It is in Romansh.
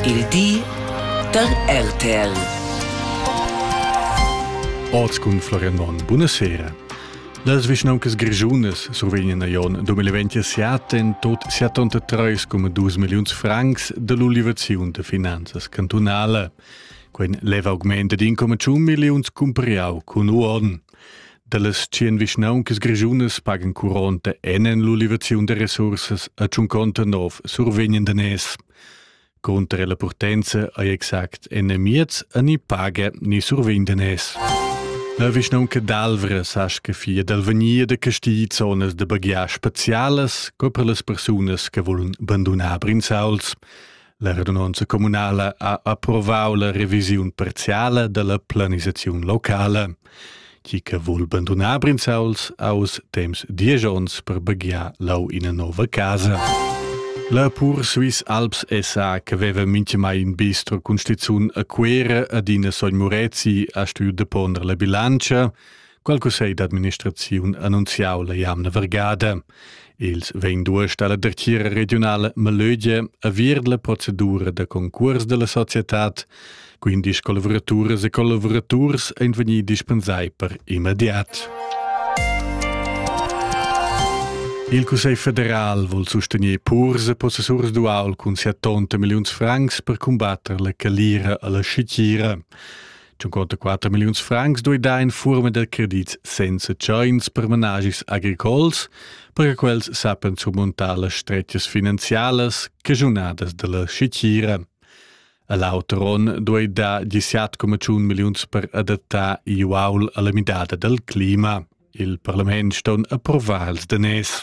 Il di da RTL. Oz cun Florian Monn. Buonasera. Las vischnauncas grischunas survegnan a Jon 2027 en tot 73,2 milliuns francs dall'ulivaziun da finanzas cantunala. Quei leva augment ad 1,1 milliuns cumpariau cun uorden. Dallas tschien vischnauncas grischunas pagan curonta enen l'ulivaziun da resursas a tschunconta nov survegnen danès. Cunter la purtenza ei exact enemiez a ni paga ni survegn danès. La vischnaunca d'Alvra sa che fia d'Alvania de Castigli zonas de baghiar specialas co per las persunas che volun bandonar brinzauls. La radunanza communala ha approvau la revisiun parziala dalla planisaziun locala. Chi che vul bandonar Brinzauls aus temps diesch ons per baghiar lau ina nova casa. La pur Swiss Alps SA che veva minchemai in bistro con stizun a Quera ad ina sogn Murezi ha stuiu deponder la bilancia. Qual cussegl d'administraziun annunziau la jamna vergada? Els vegn duest alla dretgira regionala Malögia a vir la procedura da concurs della societad, quindi collaboraturas e collaboraturs ein vegni dispensai per immediat. Il Cussegl federal vuol sostenere purs e possessurs dual cun 70 milions francs per combattere la calira alla scicira. 54 milliuns francs duida in furma da credit senza tschains per managis agricols, perche quels sappen surmuntar las strettas finanzialas cagiunadas dalla schitgira. A l'auter onn duida 17,1 milliuns per adattar Iuaul alla midada dal clima. Il parlament ston approvar els daners.